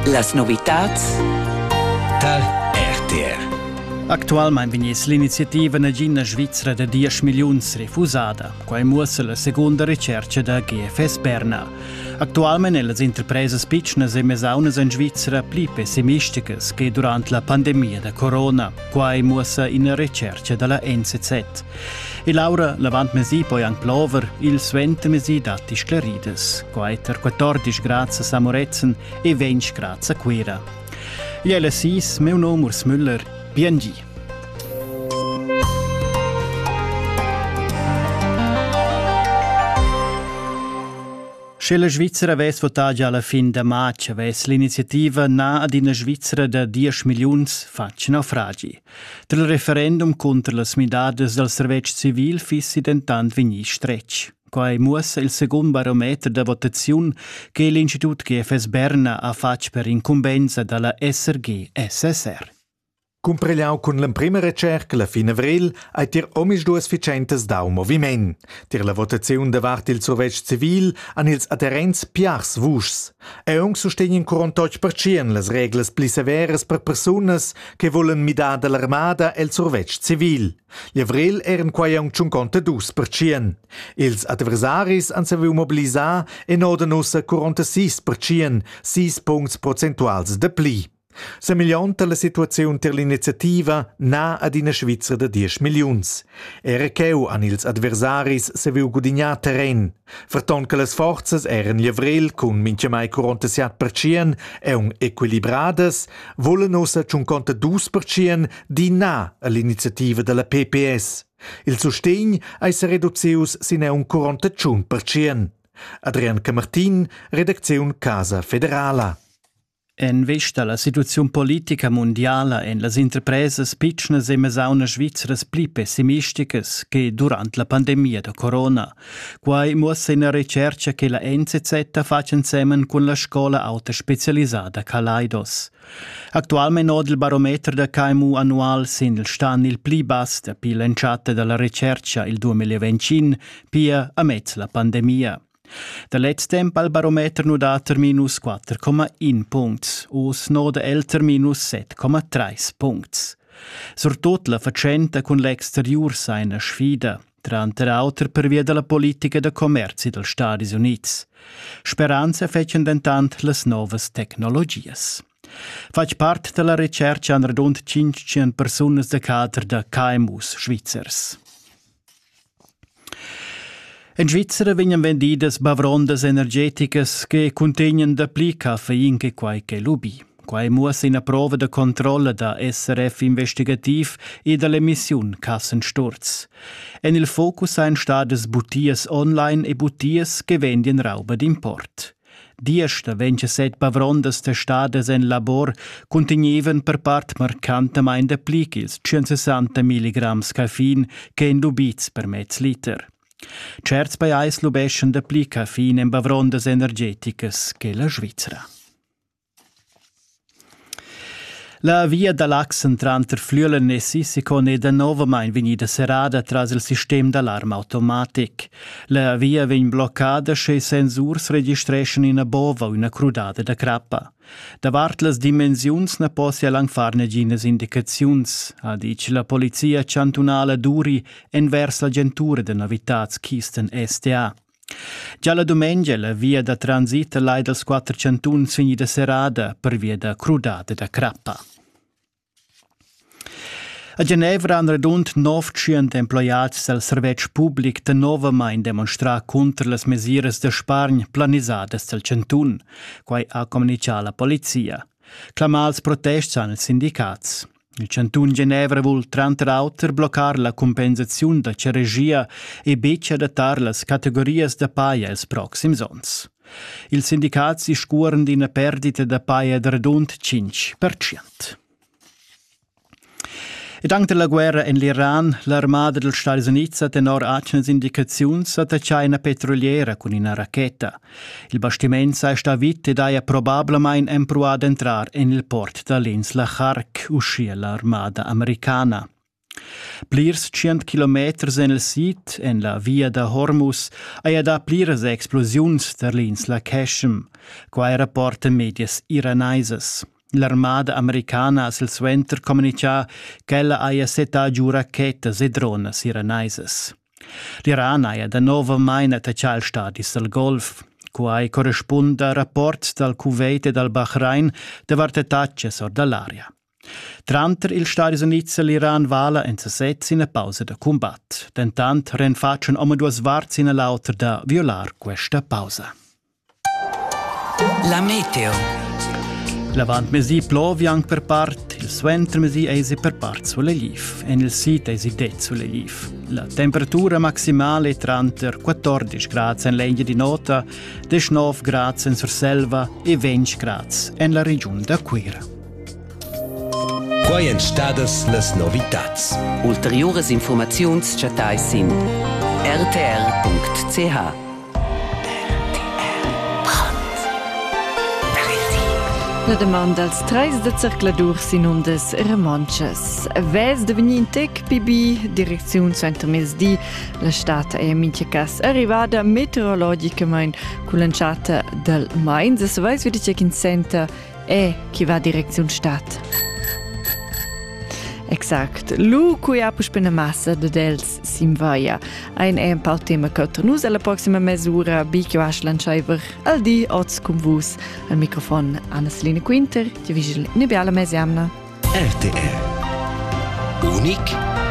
Las novitads dal RTR Actualmain vegniss l'iniziativa nagina Svizra da 10 milliuns refusada. Quai muossa la segunda recerca da GFS Berna. Actualmain è las interpresas pitschnas e mesaunas en Svizra pli pessimisticas che durant la pandemia da corona. Quai muossa ina recerca da la NZZ. E l'aura l'avantmesi poi anche plover, il suentemesi datti sclaridas, quai tar 14 grads a Moretzen e 20 grads a Cuira. Jelle Sis, meu nom Urs Müller, PNG. Sche la Svizzera avess votà già alla fin da marzo, avess l'iniziativa na ad ina Svizzera da 10 milliuns fatg naufragi. Dal referendum cunter las midadas dal servetsch civil fissi dentant vegnì stretg. Quai muossa il secund barometer da votaziun che l'Institut GFS Berna ha fatg per incumbensa da la SRG-SSR. Cumpregliau cun l'emprima recerca la fin avril ei tier omisduas vicentas dau moviment. Tier la votaziun davart il survetsch civil han ils adherents piars vuschs. Aunc sustegn in curon totg pertschien las reglas pli severas per persunas che volen midar dall'armada el survetsch civil. L'Avrel eran quai aunc tschunconta dus pertschien. Ils adversaris han saviu mobilisar en oden ussa 46 pertschien, sis puncts prozentuals de pli. Semillonta la situaziun ter l'iniziativa na ad ina Svizra da 10 milliuns. Era cheu han ils adversaris saviu gudignar terren. Ferton che las forzas eran livrel cun mintgamai 47 percient aun equilibradas, volan ussa tschunconta dus percient di na all'iniziativa dalla PPS. Il sustegn ei se reducius sin aun 41 percient. Adrian Camartin, redacziun Casa Federala. En vesta alla situaziun politica mundiala ein las interpresas pitschnas e mesaunas svizras pli pessimisticas che durant la pandemia da corona. Quai muossa ina retscherca che la NZZ ha fatg ensemen cun la scola auta specialisada Kaleidos. Actualmente oda il barometer da KMU annual sin il stan il pli bass dapi l'entschatta dalla retscherca il 2025, pia amez la pandemia. Da lez temp al barometer nu dat ter minus 4,1 puncts, u's noda el ter minus 7,3 puncts. Surtut la fatschenta cun l'exteriur sa ina sfida, tranter auter pervia dalla politica da commerzi dels Stadis Units. Speranza fetschen dentant las novas tecnologias. Fatg part dalla retscherca han radund 500 persunas da cader da KMUs svizzers. En Svizzera vegnan vendidas bavrondas energeticas che cuntegnan dapli caffein che quai che lubi. Quai muossa ina prova da controlla da SRF investigativ e da l'emissiun Kassensturz. En il focus ein stadas butias online e butias che vendian rauba d'import. Diesch vegn set bavrondas testadas en labor cuntegnevan per part marcantamain dapli ch'ils 160 milligrams caffein ch'èn lubids per mez liter. Certs pajais lubeschan dapli caffein en bavrondas energeticas che la Svizra. La via da l'accent tranter Flüelen e Sissekon è danovamain vegnida serrada tras il sistem d'alarm automatic. La via vegn bloccada sche sensurs registreschan ina bova u ina crudada da crappa. Davart las dimensiuns na possia lang far naginas indicaziuns, ha ditg la polizia chantunala Duri envers l'agentura da novitads Kisten STA. Gia la dumengia la via da transit lai dals quatter chantuns vegnida serrada pervia da crudada da crappa. A Genevra han radund 900 emploiads dal servetsch public danovamain demonstrà cunter las mesiras da spargn planisadas dal chantun. Quai ha communitgà la polizia. Clamà als protests han ils sindicats. Il chantun Genevra vul tranter auter bloccar la cumpensaziun da ceregia e betg adattar las categorias da paja ils proxims onns. Ils sindicats discuoran d'ina perdita da paja da radund 5%. Ed anche dalla guerra en l'Iran, l'armada dels Stati Units ha tenor atgnas indicaziuns attaccà ina petroliera cun ina racheta. Il bastiment sei sta vit ed haja probablamein empruà d'entrar en il port da l'ins la Charc, uschia l'armada americana. Plirs tschient kilometers en il sid, en la via da Hormus, haja dà pliras explosiuns tar l'insla Casham. Quai rapporta medias iranaisas. L'armada americana ha silsuenter communitgà ch'ella haja settà giu rachetas e dronas iranaisas. L'Iran haja danovamain attaccà ils stadis dal Golf. Quai correspunda al rapport dal Kuwait e dal Bahrain davart attacas or da l'aria. Tranter ils Stadis Unids e l'Iran vala en sasez ina pausa da cumbat. Dentant renfatschan omaduas varts ina l'autra da violar questa pausa. La meteo. L'avantmesi plovi anc per part, il suentermesi eisi per part sulegliv. En il sid eisi det sulegliv. La temperatura maximale è tranter 14 grad en l'Engia di Nota, 19 grad en Surselva e 20 grad en la regiun da Cuira. Quai èn stadas las novitads. Ulteriuras infurmaziuns chattai sin rtr.ch. La demanda dals trais da zercladur sinundas romontschas. Vez da vegnir in tec pibi, direcziun suentermezdi. La stad è en mintga cas arrivada meteorologicamain cull'entschatta dal mais. Savais vi che in center e chi va direcziun stat. Exact. Lu cui ha puspene massa de dels s'invaia. Ein è un pal tema che nus alla prossima mesura bi che vas lanciaiver al di oz cum vus al microfon Anna-Selina Quinter, ti vigil ne biala mesiamna. RTR. Unic